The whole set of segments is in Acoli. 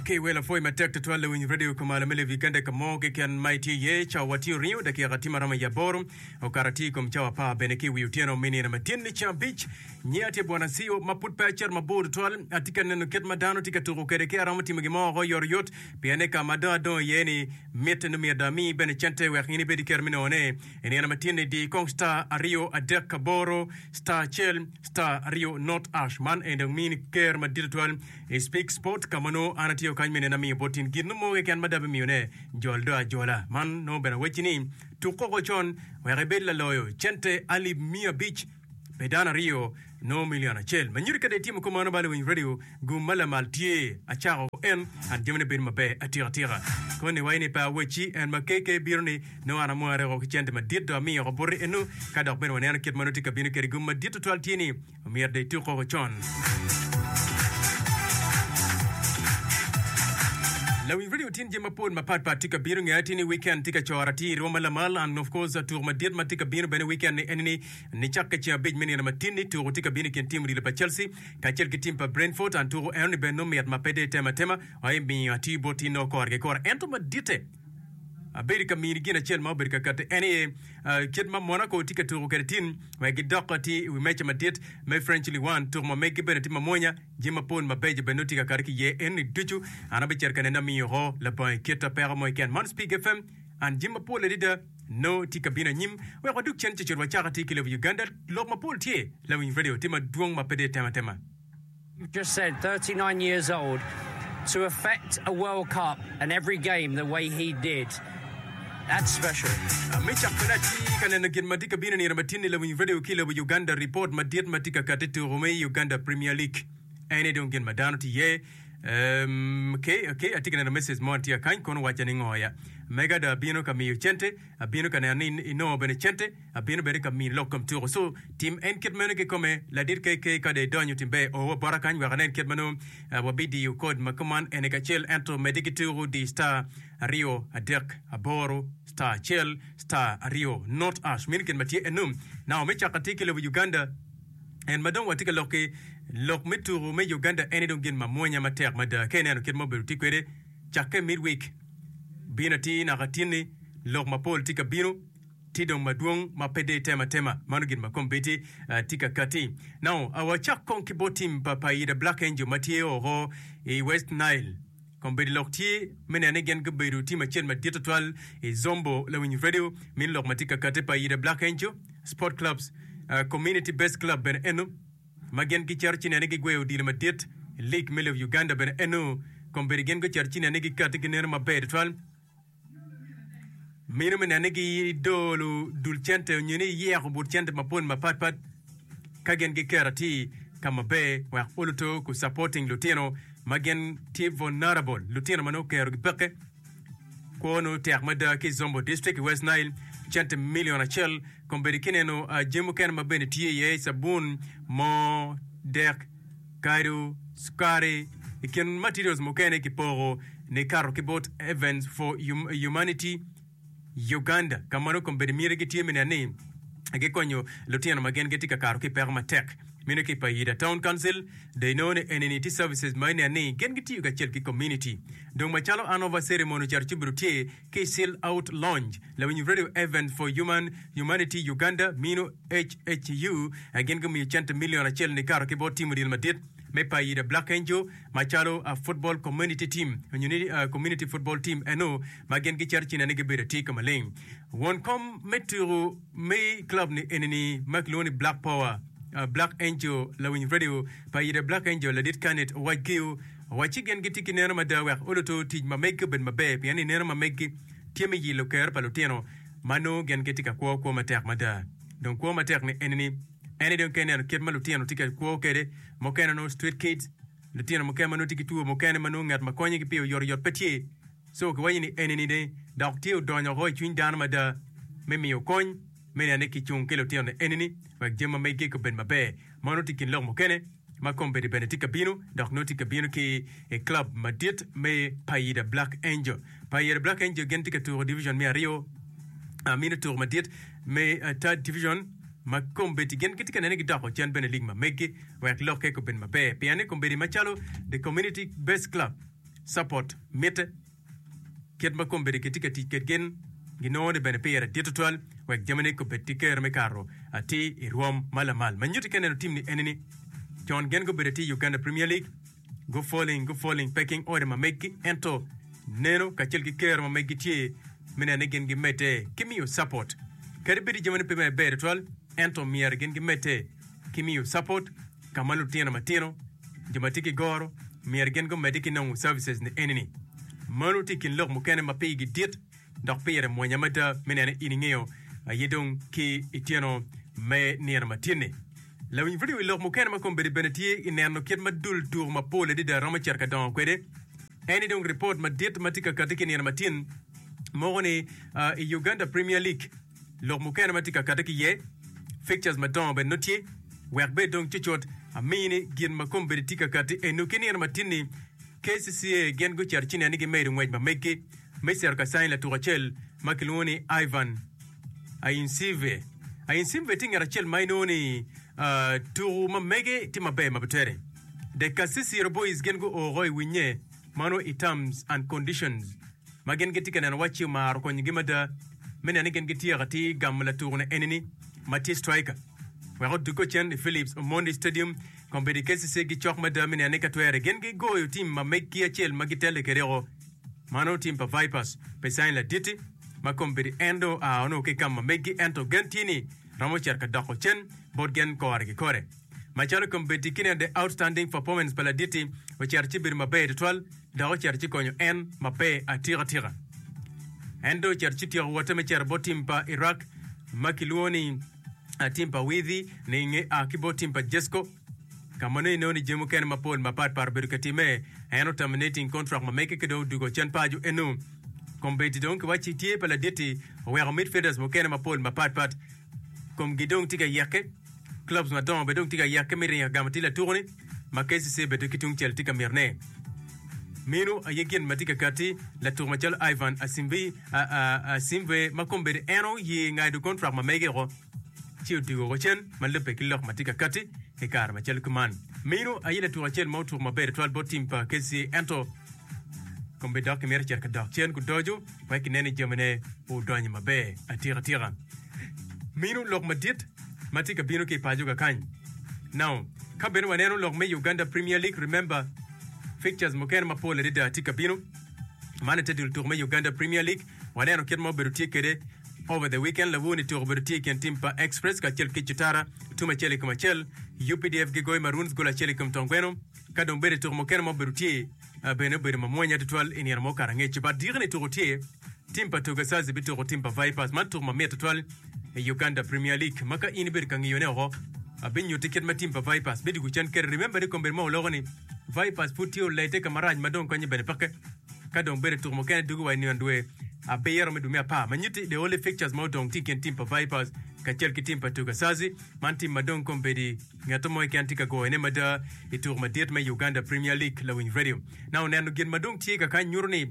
Ki wel apwoyi matek tutwal lawiny radio kumalo me Levi Uganda i ka mo keken ma itye iye. Cawa tye oringo dakika tye maromo i aboro, okato atir i kom cawa apar bene ki i wi otyeno me nino ma tyen-ni ceng abic. Nyinga tye Bwana Acio ma pud pe acito mabor tutwal. Atye ka neno kit ma dano tye ka tuko kwede ki aromo timo gin mo woko oyotoyot pien ni ka ma dong adongo iye-ni mitte nongo myero dong ami bene cente wek in ibed ki kero me nongone. I nino me tinni di kong star aryo adek aboro star acel star aryo not ash man en dong mini ker madit tutwal i speak sport ka ma nongo an atiyo kany me neno amiyo bot tin gin mo keken ma dabe miyone jol do ajola man nongo bene awecci ni tuk koko con wek ibed laloyo cente alip miya abic pi dano aryo nongo milion acel. Manyodi kadi itimo kop mano bala iwinyo radio gum ma lamal tye acako en and jamine bedo maber atika atika. Koni wa ini pe awecci en ma KK bino ni nongo an amware woko ki cente madit do amiyo woko buti eno ka dok bene waneno kit ma nongo tye ka bino kede gum madit tutwal tye ni omyero do ituk koko con. Lawiny radio tin jami mapol mapat pat tye ka bino nge tye ni weekend tye ka cora tye irwo ma lamal and of course tuko madit ma tye ka bino bene weekend ni eni ni Nicakke i ceng abic me nino matin-ni, tuku tye ka bino i kin tim odilo pa Chelsea kacel ki tim pa Brentford. An tuku enoni bene nongo mit ma pe dong itema atema, ma pe miyo atiyo bot tinna woko kore ki kore. Ento maditte, abedo ka mini gin acel ma obedo ka katti, en aye kit ma Monaco tye ka tuku kwede tin wek gidok ki i wi meja madit me French Ligue One. Tuku ma megi bene tye mamwonya, jami mapol mabeco bene nongo tye ka kati ki iye. Enoni ducu an abicito ka nene amiyo woko labongo i kit peko mo keken. Man Speak FM, an jami mapol adada. No tye ka bino anyim wek wadug cen cocol wa caka tye ki lobo Uganda lok ma pol tye lawiny radio tye madwong ma pe de tema tema. Just said thirty nine years old to affect a world cup and every game the way he did that's special. Me cak kwede atye ka neno gin ma tye ka bino nino matin ni lawiny radio ki lobo Uganda report madit ma tye ka kati tuko me Uganda premier league ene dong gin ma dano tye iye Um, okay, okay, atye ka neno message mo tye kany, kono wacca ni ngo ya. Mega do abino ka miyo cente, abino ka neno ni in- inongo bene cente, abino bene ka mini lok kom tuko. So, tim en kit meno kikome, ladit KK ka do idonyo timbe o wa bota kany wek anen kit ma nongo ah, wabidiyo code ma kuman ene kacel ento mede ki tuko di star aryo adek aboro star acel star aryo not ash meno kit ma tye enum. Now me caka tye ki lobo Uganda. En ma dong watye ka lok ki lok me tuku me Uganda ene dong gin ma mwonya matek mada. Ka ineno kit ma obedo tye kwede cakke midweek bino atir naka tinni, lok mapol tye ka bino, tye dong madwong ma pe deyo tema tema. Mano gin ma kombeddi tye ka katti. Now, wacak kong ki bot tim pa Paida Black Angel ma tye oko i West Nile. Kombeddi lok tye me neno ni gin gubedo tim acel madit tutwal i Zombo lawiny redio, mini lok ma tye ka kati pa Yida Black Angel Sport Clubs, Community Based Club bene eno, ma gin gicito ci neno ni gigweyo odilo madit, League me lobo Uganda bene eno, kombeddi gin gucito ci neno ni gikati gineno maber tutwal. mino me nene gi dolo dul cente onyo ni yeko but cente mapol mapat pat ka gin gi kera ti ka maber wek oluto ku supporting lutino ma gin ti vulnerable lutino ma nongo kero gi peke kwo nongo tek mada ki zombo district i west nile cente million acel kombedi ki neno jami mukene ma bene tye iye sabun moo dek Kadu, sukari, i kin materials mukene kipoko ni kato ki bot Evans for Humanity Uganda ka ma nongo kombeddi miti gitye me nen ni gikonyo lutino ma gin gitye ka kato ki i peko matek. Meno ki i Paida Town Council dong inongo ni enini tye services ma inen ni gin gitiyo kacel ki community. Dong macalo Anova Ceremony oceto ci obedo tye ki Seal Out Lounge. Lawiny Radio Events for Human Humanity Uganda mino, HHU, a gin gumiyo cente milion acel nikato ki bot timo dyel madit me payi the Black Angel macalo a football community team onyo ni a community football team eno ma gin giceto cina ni gibedo atye ka maleng. Won kom me tuku me club ni eni ni ma kilwongo ni Black Power a Black Angel lawiny radio payi the Black Angel ladit Kanit owac giyo Wacci gin gitye ki neno mada wek oluto tic ma megi obed maber pien ni neno ma megi tye me yilo ker pa lutino ma nongo gin gitye ka kwo kwo matek mada. Dong kwo matek-ni enini, En-ni dong ka ineno kit ma lutino tye ka kwo kwede, mukene onongo street kids, lutino mukene ma nongo tye ki two mukene ma nongo ngat ma konyogi pi oyotoyot pe tye. Co kiwaco ni enini ni dok tye odonyo woko i cwiny dano mada me miyo kony me neno ni kicung ki lutino enini wek jami ma megi obed maber. Meno tye i kin lok mukene. ma kombeddi bene tye ka bino dok nongo tye ka bino ki i club madit me Paida Black Angel. Paida Black Angel gin tye ka tuko division me aryo, ah, mini tuko madit me ah, third division ma kombeddi gin gitye ka nene gidoko cen bene lig ma meggi wek lokke obed maber pien ni kombeddi macalo the community based club support mitte. Kit ma kombeddi kitye ka tic kwedgi ginongo ni bene pire dit tutwal wek jamine kobed ki kero me kato atir i rwom ma lamal. Ma nyutti ka neno timni eni ni, Con gen gubedo atir i Uganda Premier League, gufoling gufoling pe king order ma meggi ento neno kacel ki kero ma meggi tye me neno ni gin gimedde ki miyo support. Kadi bed i jamine pe maber tutwal ento myero gin gimedde ki miyo support ka ma lutino matino Jo ma tye ki goro myero gin gumedde ki nongo services ni eni ni, Mano tye i kin lok mukene ma pigi dit dok pire mwonya mada me nene in ingeyo aye dong ki i tyeno me nino ma tye ni. Lawiny vidio wi lok mukene ma kombeddi bene tye i neno kit ma dul tuko mapol adada romo cito ka dongo kwede eni dong ripot madit ma tye ka kati ki i nino ma tin mogo ni i Uganda Premier League. Lok mukene ma tye ka kati ki iye, Pictures madongo bene nongo tye. Wek bed dong cutcut, amiyi ni gin ma kombeddi tye ka kati enu ki nino matin-ni, KCCA gin gucito ci nen ni gimedo ngwec ma meggi me cito ka canyi latuk acel ma kilwongo ni Ivan Ainsive. Ainsive tye ngat acel ma inongo ni tuku ma mege tye maber ma bitere dek. Kasisi Robois gin guo oko i winnye ma nongo i Terms and Conditions. ma gin gitye ka neno wacci omaro konyogi mada me neno ni gin gityeko atir gamo latukone eni-ni ma tye striker wek odugge ocen i Phillips Omondi Stadium. Kombeddi KCC gicok mada me neno ni ka twere gin gigoyo tim ma meggi acel ma gitelle kwedego ma nongo tim pa Vipers pe caing laditi ma kombeddi en dong oa onongo ki i kam ma meggi ento gen tye ni romo cito ka doko cen bot gen kore ki kore. Macalo kombeddi ki neno the outstanding performance pa laditi ocito ci bedo maber tutwal. dok ocito ci konyo en ma pe atikatika. En dong ocito ci tyeko wotte me cito bot tim pa Iraq ma kilwongo ni tim pa Widhi ni i nge a ki bot tim pa Jesco, ka ma nongo ineno ni jami mukene mapol mapat pat obedo ka timme. En o terminating contract ma mege ki dong odugo cen paco eno. Kombeddi dong kiwacci tye pa laditti oweko midfielders mukene mapol mapat pat. Komgi dong tye ka yeke. Clubs madongo bene dong tye ka yeke me ringo ka gamo atir latuku-ni ma KCCA bene ki tungcel tye ka mitine. Meno aye gin ma tye ka katti latuku macalo Ivan Asimbi, a, a, Asimve ma kombeddi en oye ngado kontrak ma mege woko ci odwogo woko cen ma lubbe ki lok ma tye ka katti i kare macalo kuman. Meno aye latuku acel ma otuku maber tutwal bot tim pa KCCA ento kombeddi dok kimito cito ka dok cen kudoco. wek ginen ni jamine odonyo maber atikatika. Minu lok madit ma tye ka bino ki i paco kakany. Now, ka bene waneno lok me Uganda Premier League, remember fixtures mukene mapol adada tye ka bino. Man ite dul tuko me Uganda Premier League, waneno kit ma obedo tye kwede over the weekend. Lawoo ni tuko obedo tye i kin tim pa Express kacel ki Cutara, tum acel i kom acel. UPDF gigoyo Maroons gol acel i kom Tongweno. Ka dong bene tuko mukene ma obedo tye Bene obedo mamwonya tutwal i nino mo Karangec bad dyekeni i tuko tye tim pa Togasasi bituko tim pa Vipers. Man tuko mamit tutwal i Uganda Premier League ma ka in ibedo ka ngiyone oko abinyutti kit ma tim pa Vipers bidwogo cen kede. Remember ni kombeddi ma oloko ni Vipers pud tye olete ka marac ma dong konye bene peke ka dong bedo tuko mukene dugo wa i nino dwe abiro me dwe me apar ma nyutti the only fixtures ma odong tye i kin tim pa Vipers kacel ki tim pa Togasasi. Man tim ma dong kombeddi Ngat mo keken tye ka goyone mada i tuko madit me Uganda Premier League. Lawiny Radio na oneno gin ma dong tye ka kany nyuto ni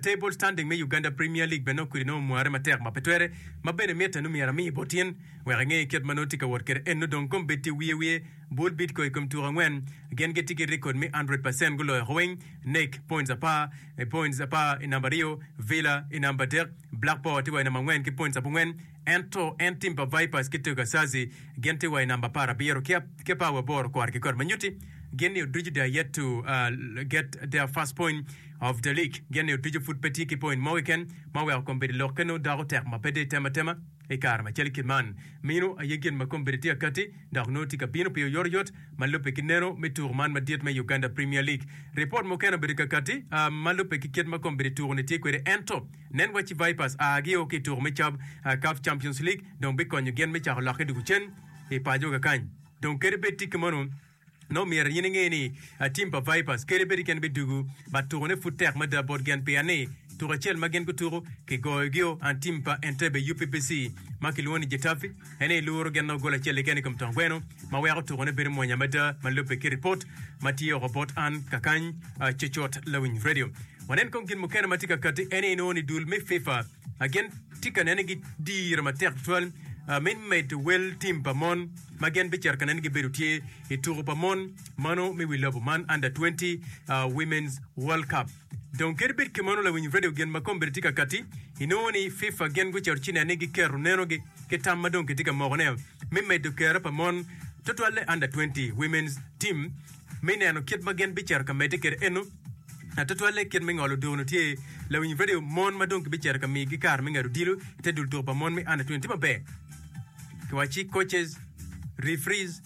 table standing me Uganda Premier League bene nongo kwede nongo omware matek ma pe twere ma bene mitte nongo myero amiye bot in wek inge kit ma nongo tye ka wot kwede enno dong kong bed tye wiye wiye bul Bidco i kom tuko angwen gin gitye ki record me 100 percent guloyo oko weng nek points apar points apar i namba aryo Villa i namba adek Blackpool tye wa i namba angwen ki points abongwen Ento en tim pa Vipers ki Tugersazi gin tye wa i namba apar abiro ki apawi aboro kwar ki kwar ma nyuti gin ni oducu they are yet to get their first point of the league gin ni oducu pud pe tye ki point mo keken ma weko kombeddi lok kene odoko tek ma pe dong itemo atema i kare macalo kit man mino aye gin ma kombeddi tye akati dok nongo tye ka bino pi oyotoyot ma lubbe ki neno me tuko man madit me Uganda Premier League. Ripot mukene obedo kakati ma lubbe ki kit ma kombeddi tuko ni tye kwede ento Nen wacci Vipers a gio ki i tuko me cab CAF Champions League dong bikonyo gin me cako lokke doko cen i paco kakany. Dong kadi bed ticki mono, nongo myero in inge ni tim pa Vipers kadi bed keken bidugu but tukone pud tek mada bot gin pien ni tuko acel ma gin gutuko kigoyogio and tim pa Entebbe UPBC ma kilwongo ni Getafe. en ni luru gin nongo gol acel keken i kom tong gweno ma weko tukone bedo mwonya mada ma lubbe ki ripot ma tye oko bot an kakany ah, cucut lawiny radio. Wanen kong gin mukene ma tye ka kati en ni inongo ni dul me FIFA ah, gin tye ka nene gi diro matek tutwal ah, me medo wel tim pa mon ma gin bicito ka nene gibedo tye i tuku pa mon mano me wi lobo man Under 20 ah, Women's World Cup. Dong kadi bed kamano, lawiny redio gin ma kombeddi tye ka katti. Inongo ni FIFA gin gucito ci nen ni giketo nenogi ki tam ma dong kitye ka mokone me medo kero pa mon, tutwalle Under Twenty Women's Team, me neno kit ma gin bicito ka medde kwede eno. Tutwalle kit me ngolo odoo-nu tye lawiny redio mon ma dong kibicito ka migi kare me ngado odilo i te dul tuko pa mon me Under Twenty tye maber. Kiwaci coaches, referees,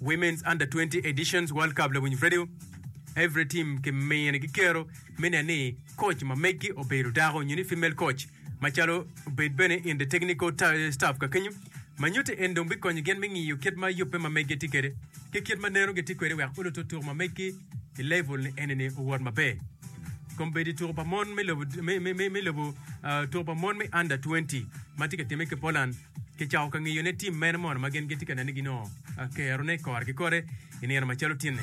Women's Under 20 Editions World Cup Lawiny Radio Every team ki mine ki kero me nen ni coach ma meggi obedo dako nyo ni female coach macalo obed bene in the technical ta- staff ka kenyo ma nyutte en dong bikonyo gin me ngiyo kit ma yubbe ma meggi tye kwede ki kit ma neno gitye kwede wek olo tutuk ma meggi i level ni eni ni owot maber kombedi tuko pa mon me lobo me, me, me, me lobo uh, tuko pa mon me under 20 ma tye ka timme ki Poland Kicako ka ngiyo ne tim mene mono ma gin gitye ka neno ni gin ongo kero ne i kore ki kore i nino macalo tinni.